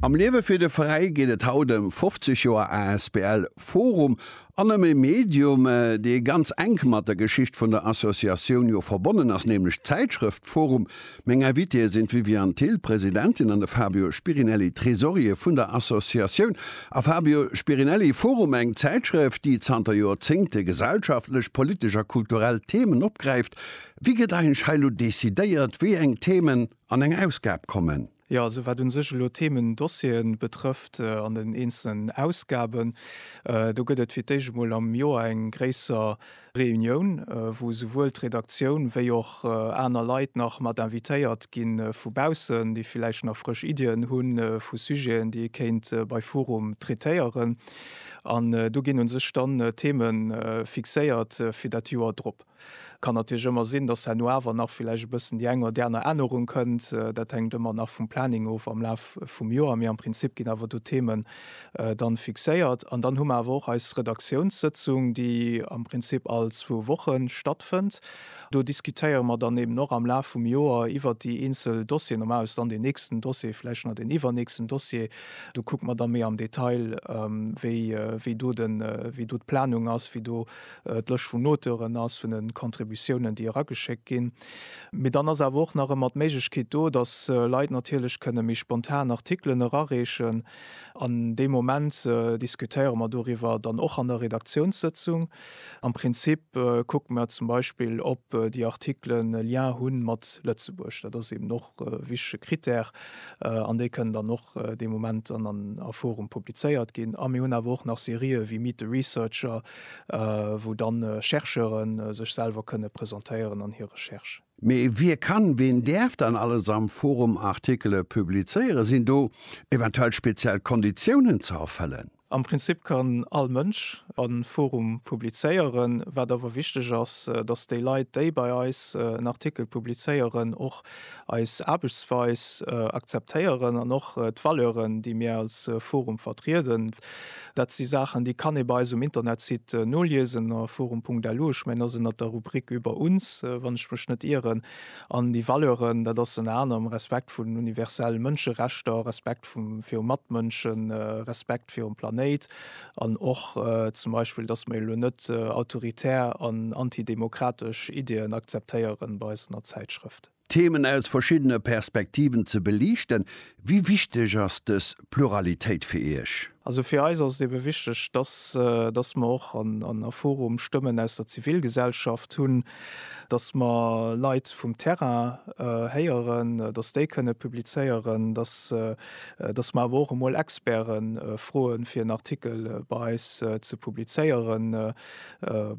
Am Liewe fir de Veräi geet et haut ëm 50 Joer asbl Forum an ëm e Medium, dee ganz enk mat der Geschicht vun der Associatioun jo verbonnen ass, nämlech d'Zäitschrëft Forum. Meng Invitéë sinn d'Viviane Thill, Presidentin, an de Fabio Spirinelli, Tresorier vun der Associatioun. A Fabio Spirinelli, Forum, eng Zäitschrëft, déi zanter Joerzéngte gesellschaftlech, politesch a kulturell Themen opgräift. Wéi gëtt eigentlech hei elo decidéiert, wéi eng Themen? An eng Ausgab kommen. Jo, esou wat un sech elo Themen, Dossieren betrëfft an den eenzelen Ausgaben, do gëtt et fir d'éischt emol am Joer eng gréisser Reunioun, wou esouwuel d'Redaktioun wéi och aner Leit nach mat invitéiert gi vu baussen, déi villäicht nach frësch Iddien hu vu Sujeten, déi ee kéint bei forum traitéieren. An do ginn un sech dann Themen fixéiert fir dat Joer drop. Kann natierlech ëmmer sinn, dass herno awer nach villäicht e bëssen déi eng oder déi aner Ännerung kënnt. Dat hänkt ëmmer nach vum Planning of am Laf vum Joer. Mee am Prinzip ginn awer do Themen dann fixéiert. An dann hu mer awer och eis Redaktiounssëtzung, déi am Prinzip all zwou Woche stattfënnt. Do diskutéiere mer dann eben och am Laf vum Joer iwwert déi eenzel Dossieren. Normal ass dann deen nächsten Dossier, villäicht nach deen iwwernächsten Dossier. Do kucke mer da méi am Detail, wéi do d'Planung ass, wéi do d'Lëscht vun Auteuren ass, vun de Contributiounen, déi erageschéckt ginn. Mee dann ass awer och nach ëmmer d'Méiglechkeet do, dass Leit natierlech kënne méi spontan Artikelen erareechen. An dee Moment diskutéiere mer doriwwer dann och an der Redaktiounssëtzung. Am Prinzip kucke mer zum Beispill, ob déi Artikelen e Lien hu mat Lëtzebuerg. Dat ass eben och. wichtege Critère an déi kënnen dann och dee Moment an an a Forum publizéiert ginn. A mir hunn awer och nach Serië wéi Meet the Researcher, wou dann Chercheure sech selwer kënne presentéieren an hir Recherche. Mee wie kann, wien däerf dann alles am Forum Artikele publizéieren? Sinn do eventuell speziell Konditiounen ze erfëllen? Am Prinzip kann all Mënsch an en Forum publizéieren, wat awer wichteg ass, dass déi Leit, déi bei eis en Artikel publizéieren, och eis Aarbechtsweis akzeptéieren an och d'Valeuren, déi mir als Forum vertrieden. Dat si Saachen, déi kann ee bei eis um Internetsite noliesen, a forum.lu. Ech mengen, dat ass ënnert der Rubrik Über uns, wann ech mech net ieren. An déi Valeuren, dat ass ënner anerem Respekt vun universelle Mënscherechter, Respekt. virum Matmënschen, Respekt virum Planéit an och zum Beispill, datt mer elo net autoritär an antidemokratesch Iddien akzeptéieren bei eis an der Zäitschrëft. Themen aus verschiddene Perspektiven ze beliichten. Wéi wichteg ass dës Pluralitéit fir Iech? Also fir eis ass et ebe wichteg, datt mer och an a Forum Stëmmen aus der Zivilgesellschaft hunn, dass mer Leit vum Terrain héieren, dass déi kënne publizéieren, dass mer awer och emol Experte froen, fir en Artikel bei eis ze publizéieren,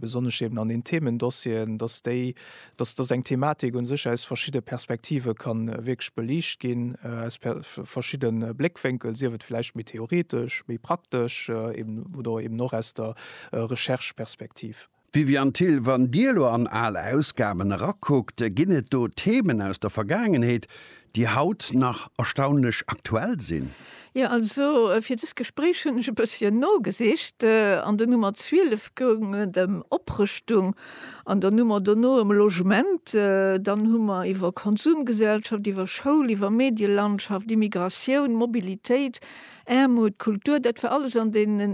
besonnesch eben an den Themendossieren, dass déi, dass eng Thematik u sech aus verschidde Perspektive ka wierklech beliicht ginn, aus verschidde Bléckwénkel, sief et vläicht méi theoretesch, méi praktesch oder eben och aus der Rechercheperspektiv. Viviane Thill, Wann Dir elo an al Ausgaben erakuckt, ginn et do Themen aus der Vergaangenheet, déi haut nach erstaunlech aktuell sinn? Jo, also fir dëst Gespréich hunn ech e bësschen nogesicht. An der Nummer 12 goung et ëm Oprëschtung, an der Nummer dono ëm Logement. Dann hu mer iwwer Konsumgesellschaft, iwwer Schoul, iwwer Medielandschaft, Immigratioun, Mobilitéit, Aarmut, Kultur, dat war alles an deenen